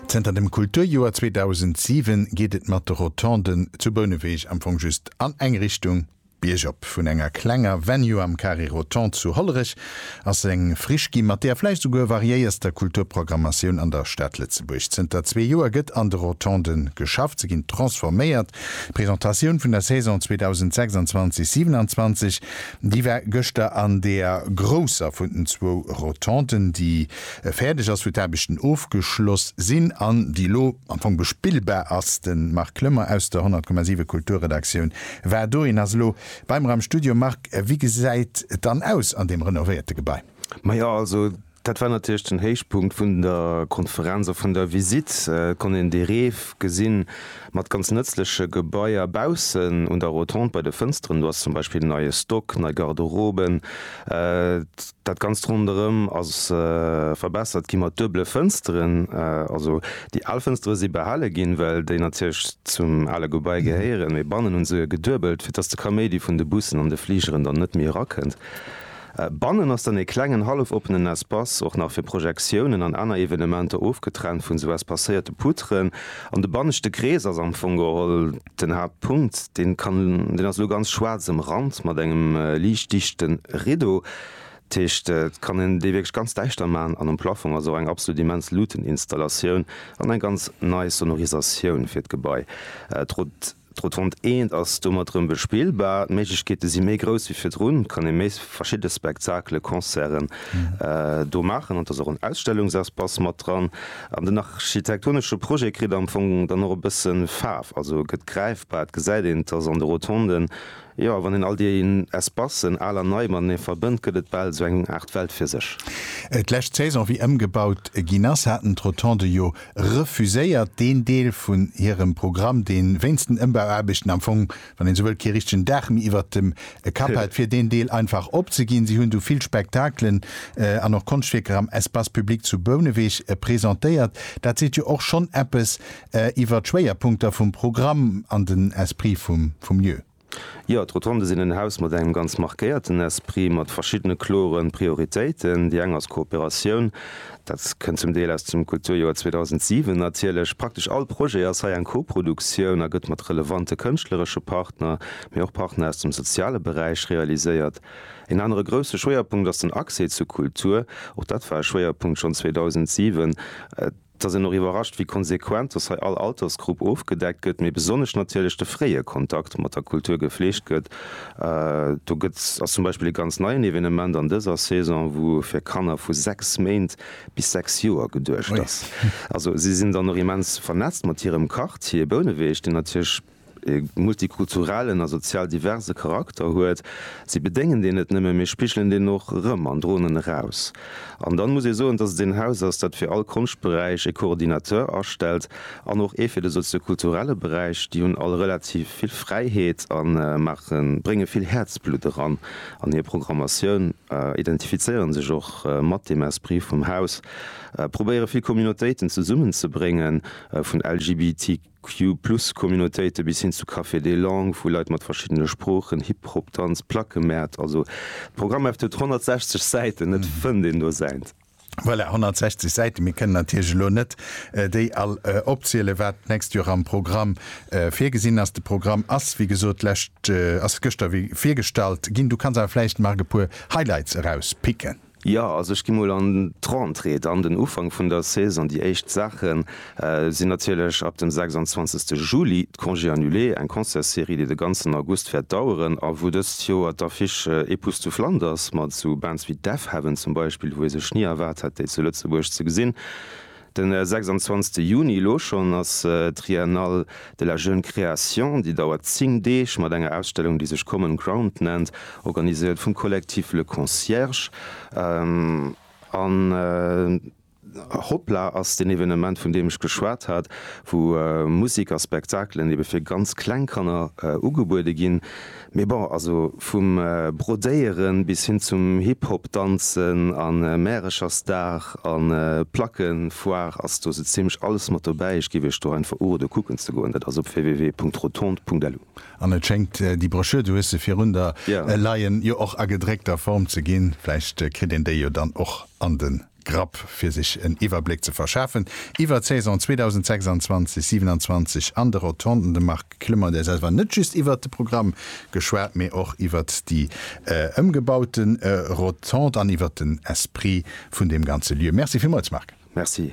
Zënter dem Kulturjoer 2007 geet et mat de Rotonden zu Bouneweg am Fong just an eng Richtung, biergop. Vun enger klenger Venue am Carré Rotondes zu Hollerech ass eng Friche gi mat der vläicht souguer variéierster Kulturprogrammatioun an der Stad Lëtzebuerg. Zënter zwee Joer gëtt an de Rotonde geschafft, se ginn transforméiert. D'Presentatioun vun der Saison 2026, 27 Déi war gëschter an deer grousser vun den zwou Rotonden, déi fäerdeg ass, wou d'Aarbechten ofgeschloss sinn an déi elo am Fong bespillbar ass. De Marc Lömmer aus der 100,7 Kulturredaktioun war do. Hien ass elo bei mer am Studio. Marc, wéi gesäit et dann aus an deem renovéierte Gebai? Majo, also Dat war natierlech den Héichpunkt vun der Konferenz a vun der Visitt. Et konnt een dee Reef gesinn, mat ganz nëtzleche Gebaier baussen un der Rotonde. Bei de Fënsteren do ass zum Beispill en neie Stock, nei Garderoben. Dat Ganzt ronderëm ass verbessert gi mat duebele Fënsteren. Also déi al Fënstere si behale ginn, well déi natierlech zum ale Gebai gehéieren, mee bannen hu se geduebelt, fir dass de Kaméidi vun de Bussen an de Fligeren dann net méi erakënnt. Bannen ass dann ee klengen hallef-oppenen Espace, och nach fir Projektiounen an aner Evenementer, ofgetrennt vun sou espacéierte Poutren. An de banneschte Krees ass am Fong geholl den Haaptpunkt. Deen kann, deen ass elo ganz schwaarz ëmrannt mat engem liicht dichte Rideau. Dat heescht, et kann een dee wierklech ganz däischter maachen. An um Plafong ass och eng absolut immens Luuteninstallatioun an eng ganz nei Sonorisatioun fir d'Gebai. Trotz. D'Rotonde Eent ass domat erëm bespillbar. D'Méiglechkeete si méi grouss wéi virdrun, kann ee méi verschidde Spektakelen, Concerten do maachen an et ass och en Ausstellungsespace mat dran. An den architektonesche Projet kritt am Fong dann och e bësse Faarf, also e gëtt gräifbar, et gesäit een, et ass an de Rotonden Jo, wann een all déi Espacen, al an nei, matenee verbënnt, gëtt et bal esou eng Aart Welt fir sech. D'lescht Saison, wéi ëmgebaut ginn ass, haten d'Rotondë jo refuséiert, deen Deel vun hirem Programm, deen wéinst den Ëmbauaarbechten am Fong, wann een esou wëllt, kee richtegen Daach méi iwwert dem Kapp hat, fir deen Deel einfach opzeginn. Si hunn du vill Spektakelen an och Konschtwierker am Espace public zu Bouneweg presentéiert. Dat seet jo och schonn eppes Iwwer d'Schwéierpunkter vum Programm an den Esprit vum Lieu. Jo, d'Rotonde sinn en Haus mat engem ganz markéierten Esprit, mat verschiddene kloren Prioritéiten. Déi eng ass Kooperatioun. Dat kënnt zum Deel aus dem Kulturjoer 2007 natierlech. Praktesch all Projet ass hei eng Koproduktioun a gëtt mat relevante kënschtleresche Partner, mee och Partner aus dem soziale Beräich realiséiert. Een anere grousse Schwéierpunkt ass den Accès zu Kultur. Och dat war e Schwéierpunkt schonn 2007. Et ass een och iwwerrascht, wéi konsequent dass hei all Altersgrupp ofgedeckt gëtt, mee besonnesch natierlech de fréie Kontakt mat der Kultur gefleegt gëtt. Do gëtt ass zum Beispill e ganz neien Evenement an dëser Saison, wou fir Kanner vu 6 Méint bis 6 Joer geduecht ass. Also si sinn dann och immens vernetzt mat hirem Quartier Bouneweg, deen natierlech e multikulturellen a sozial diverse Charakter huet, si bedéngen deen net nëmme, mee spigelen deen och erëm an droen en eraus. An dann muss ee soen, dass et een Haus ass, dat fir all Konschtberäich e Coordinateur astellt an och ee fir de soziokulturelle Beräich. Déi hunn all relativ vill Fräiheet a maache, brénge vill Häerzblutt eran an hir Programmatioun, identifizéiere sech och mat deem Esprit vum Haus, probéiere vill Communautéiten zesummenzebréngen, vun LGBTQ. Q-Plus-Communautéite bis hin zu Cafés des langues, wou Leit mat verschiddene Sproochen, Hip Hop, Danz, Plackemäert, also d'Programmheft huet 160 Säiten, et fënnt een do säint. Voilà, 160 Säiten, mir kënnen natierlech elo net déi all opzielen, wat d'nächst Joer am Programm virgesinn ass. De Programm ass wéi gesot d'lescht, ass gëschter virgestallt ginn. Du kanns awer vläicht, Marc, e puer Highlights erauspicken. Jo, also ech gi mol an d'Rentrée, dann den Ufank vun der Saison. Déi éischt Saache sinn natierlech ab dem 26 Juli d'Congés annulés, eng Concertsserie, déi de ganzen August wäert daueren a wou dëst Joer d'Affiche Épouses to Flanders mat esou Bands wéi Deafheaven zum Beispill, wou ee sech ni erwaart hätt, déi zu Lëtzebuerg ze gesinn. De 26 Juni elo schonn ass d'Triennale de la jeune création, déi dauert 10 Deeg, mat enger Ausstellung, déi sech Common Ground nennt, organiséiert vum Collectif Le Concierge. An Hoppla ass deen Evenement, vun deem ech geschwat hat, wou Musek a Spektakelen ebe fir ganz kleng Kanner ugebuede ginn. Mee bon, also vum Brodéieren bis hin zum Hip-Hop danzen a Märechersdag a Plackenfoire ass do sou zimlech alles mat dobäi. Ech giff iech do einfach urode kucken ze goen, dat ass op www.rotonde.lu. An et schéngt déi Broschür, du hues se virun der leien, jo och a gedréckter Form ze ginn. Vläicht kritt een déi jo dann och an de Grapp, fir sech en Iwwerbléck ze verschafen iwwert d'Saison 2026, 27 an de Rotonden. De Marc Clement, der Saas, war net just iwwert de Programm geschwat, mee och iwwert déi ëmgebaute Rotonde an iwwert den Esprit vun deem ganze Lieu. Merci villmools, Marc. Merci.